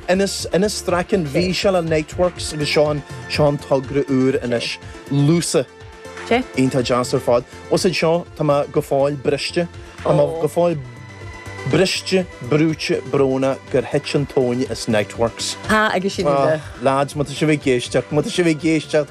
Innes, Innes Strachan, bhí sé le Niteworks agus seo an, seo an togra úr anois, Lúsa. Iontach deas ar fad. Usaid seo, tá mé go fóill briste, tá mé go fóill briste, brúite, brónach gur thit an tóin as Niteworks. Ah, agus sin é. Ah, lads, má tá sibh ag éisteacht, má tá sibh ag éisteacht.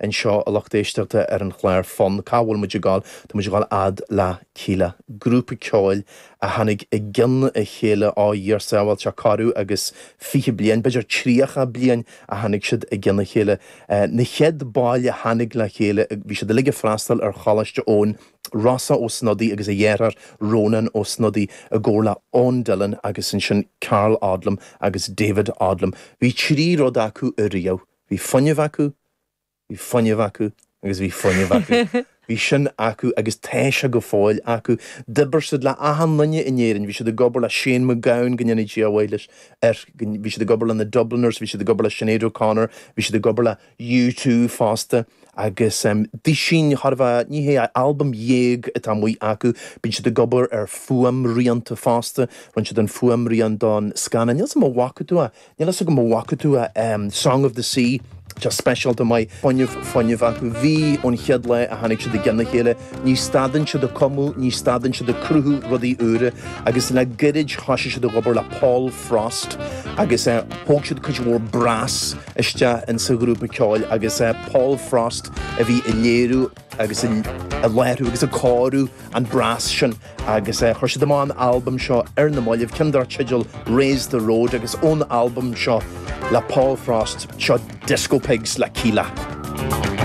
anseo a lucht éisteachta ar an chlár Fonn, cá bhfuil muid ag dul? Tá muid ag dul fhad le Kíla, grúpa ceoil a tháinig i gcionn a chéile ó a Dhia ár sábháil, tá corradh agus fiche bliain, b'fhéidir tríocha bliain a tháinig siad i gcionn a chéile. Na chéad baill a tháinig le chéile bhí siad uilig ag freastal ar Choláiste Eoin, Rossa Ó Snodaigh agus a dheartháir Rónán Ó Snodaigh i gcomhar le Eoin Dillon agus ansin Karl Odlum agus David Odlum. Bhí trí rud acu ariamh. Bhí fuinneamh acu, bhí fuinneamh acu agus bhí fuinneamh acu. Bhí sin acu agus tá sé go fóill acu. D'oibir siad le achan nduine in Éirinn. Bhí siad ag obair le Shane MacGowan, go ndéana Dia a mhaith leis, air, bhí siad ag obair le na Dubliners, bhí siad ag obair le Sinéad O'Connor, bhí siad ag obair le U2 fosta agus em duisín charbh ea, ní hea, albam dhéag atá amuigh acu. Bíonn siad ag obair ar fuaimrianta fosta, rinne siad an fuaimrian don scannán, níl 's im a bhfaca tú é, Níl fhios agam a bhfaca tú é, Song of the Sea, tá speisialta maith fuinneamh, fuinneamh acu. Bhí ón chéad lá a tháinig siad i gceann a chéile. Ní stadann siad ag cumadh, ní stadann siad ag cruthú rudaí úra agus le gairid thoisigh siad ag obair le Paul Frost agus thóg siad cuid mhór brass isteach insa ghrúpa ceoil agus Paul Frost a bhí ag léiriú agus ag láithriú agus ag cóiriú an brass sin agus chuir siad amach an albam seo ar na mallaibh ceann dar teideal Raise the Road agus ón albam seo le Paul Frost seo Disco Pigs le Kíla.